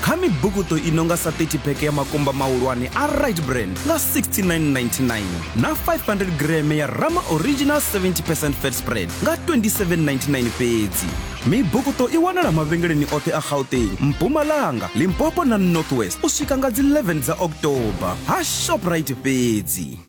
kha mibukuṱo i no nga sa 30 pheke ya makumba mahulwane a Right Brand nga 69.99 na 500 greme ya Rama Original 70 percent fat spread nga 27.99 fhedzi. Mibukuṱo i wanala mavhengeleni oṱhe a Gauteng, Mpumalanga, Limpopo na North West u swika nga dzi 11 dza October ha Shoprite fhedzi.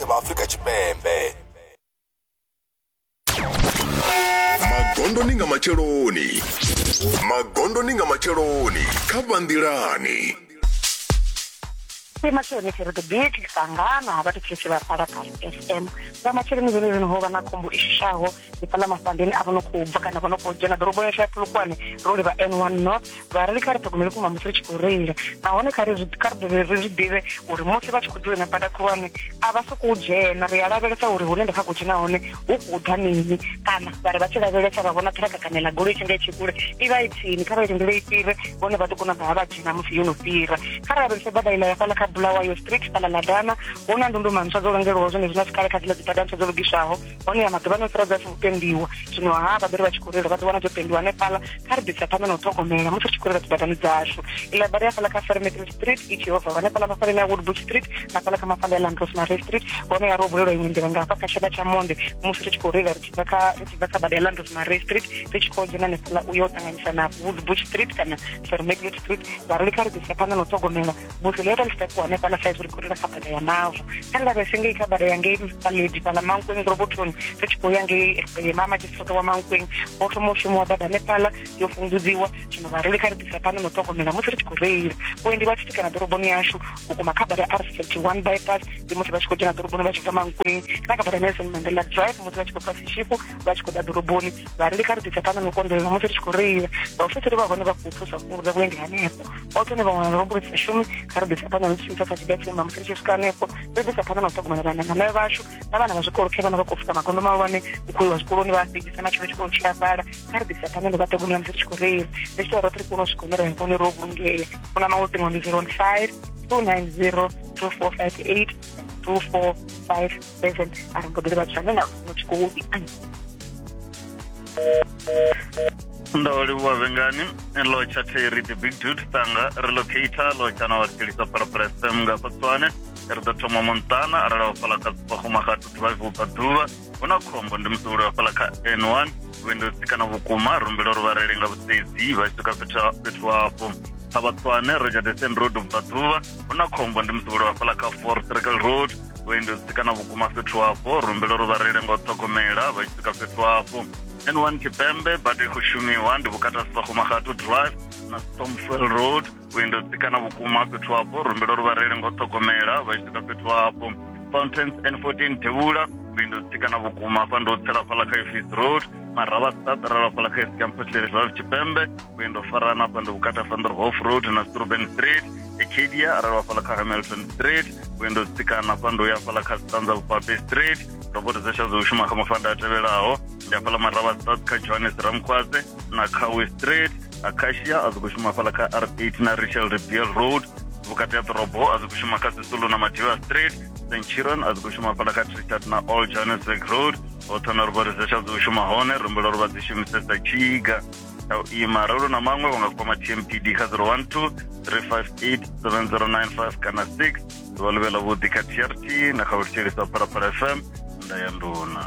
vhoṱhe vha afrika tshipembe magondoni nga matsheloni magondoni nga matsheloni kha vhanḓilani Simatshoni tshi ri ḓo biyetisa ngana vha tou tshila phala kha FM. Nga matsheloni zwenezwino ho vha na khombo i shushaho ndi fhaḽa mafhandeni a vho no khou bva kana vho no khou dzhena ḓorobo yashu ya phulukwane ro livha n one north vha ri kha ri ṱhogomele kuma musi ri tshi khou reila nahone kha ri kha ri dovhe ri zwi ḓivhe uri musi vha tshi khou ḓiwena bada khulwane a vha sokou dzhena ri a lavhelesa uri hune nda kha khou dzhena hone hu khou ḓa mini kana vha ri vha tshi lavhelesa vha vhona ṱhiraka kana ḽa goloi tshi nga itshi kule i vha i tsini kha vha i lindele i fhire vhone vha ḓo kona ḓa vha dzhena musi yo no fhira kha ri lavhelese bada iḽa ya fhaḽa kha bulawayo street fhaḽa ladana hu na ndundumantswa dzo langelwaho zwone zwina zwikale kha dziḽa dzi bada ntswa dzo lugiswaho hone ya maḓuvha no tsira dza songo pendiwa zwino ha vha ḓori vha tshi khou reila vha ḓi wana dzo pendiwa hanefhaḽa kha ri ḓisa phanḓa na u ṱhogomela musi ri tshi khou reila dzibadani dzashu iḽa bada ya fhaḽa kha fermetre street i tshi yova hanefhaḽa mafhaleni a woodbush street na fhaḽa kha mafhala ya landrosmary street hone ya ro bulelwa iṅwe nḓila nga hafha kha shaba tsha monde musi ri tshi khou reila ri tshi bva kha ri tshi bva kha bada ya landrosmary street ri tshi khou dzhena hanefhaḽa u yo ṱanganyisa na woodbush street kana fermetre street vhareli kha ri ḓisa phanḓa na u ṱhogomela muthu ḽe vha ḽi takuwa hanefhaḽa sa izwi ri khou rela kha bada ya mavu kha ri lavhelese ngei kha bada ya ngei paledi fhaḽa mankweng robothoni ri tshi khou ya ngei eh, ma madzhisitirata wa mankweng ho thoma u shumiwa bada hanefhaḽa yo fhungudziwa zwino vhareili kha ri ḓisa phanḓa no ṱhogomela musi ri tshi khou reila vhuendi vha tshithu kana ḓoroboni yashu vhukuma kha bada r 31 bypass ndi musi vha tshi khou dzhena ḓoroboni vha tshi bva mankweng na kha bada nelson mandela drive musi vha tshi khou bva sishifu vha tshi khou ḓa ḓoroboni vhareili kha ri ḓisa phanḓa no konḓelela musi ri tshi khou reila vhaofisiri vha hone vha khou thusa u fhungudza vhuendi hanefho Oto ne vhaṅwe vha vhulisa shumi kha ri ḓisa phanḓa na tshishumiswa sa tshiga tshiima musi ri tshi swika hanefho ri ḓisa phanḓa na u ṱhogomela vhana na nae vhashu na vhana vha zwikolo khe vhana vha khou fuka magondo mahulwane u khou iwa zwikoloni vha fhedzisa matshilo tshikolo tshi afhala kha ri ḓisa phanḓa ndi vha ṱhogomela musi ri tshi khou reila ri tshi tou roṱhe ri kone u swika hune ra ya hone ro vhulungea u na maṅwe ṱingo ndi zero one five two nine zero two four five eight two four five Vincent a ri mbo ḓi ri vhathu vhane na muthu khou vhi ndo livhuwa vhengani lotsha theri the big dude tanga relocator lotsha na wasilisa phalaphala fm nga khotswane ri ḓo thoma montana arali wa fhala kha dzipakgoma ga tutu vha vhubva ḓuvha hu na khombo ndi musi uli wa fhala kha n one vhuendi u tsikana vhukuma rumbela uri vhareli nga vhusedzi vha tshi swika fhethu hafho kha vhatswane roger desen road vhubva ḓuvha hu na khombo ndi musevhelo wa fhaḽa kha four trickle road vhuendi u tsikana vhukuma fhethu hafho rumbela uri vhareile nga u ṱhogomela vha tshi swika fhethu hafho n one tshipembe badi khou shumiwa ndi vhukati ha sibakgomagatu drive na stomfell road vhuendi u tsikana vhukuma fhethu hafho rumbela uri vhareile nga u ṱhogomela vha tshi swika fhethu hafho fountains n fourteen devhula vhuendi u tsikana vhukuma fha ndi u tsela fhaḽa kha efis road marava siṱaṱarela fhaḽa kha esikamphotlele zwa tshipembe vhuendi u farana fha ndi vhukati ha fanderhof road na struben street e kd arali wa fhala kha hamilton street vhuendo tsikana fha ndo ya fhala kha stanza vhufhabe street robot dza shadzo u shuma kha mafanda a tevhelaho ndi a fhala marava south kha johannes ramkhwase na cowe street acacia a zwi khou shuma fhala kha r 8 na richel rebiel road vhukati ha ḓorobo a zwi khou shuma kha sisulu na madiva street st chiron a zwi khou shuma fhala kha trichat na all johannesburg road hoṱhe na robot dza shadzo u shuma hone rumbela uri vha dzi shumisesa tshiga ya u ima ralo na maṅwe vha nga kwama tmpd kha 012 358 7095 kana 6 ḓuvha ḽi vhe ḽa vhuḓi kha trt na kha u thetshelesa phalaphala fm nda ya nduna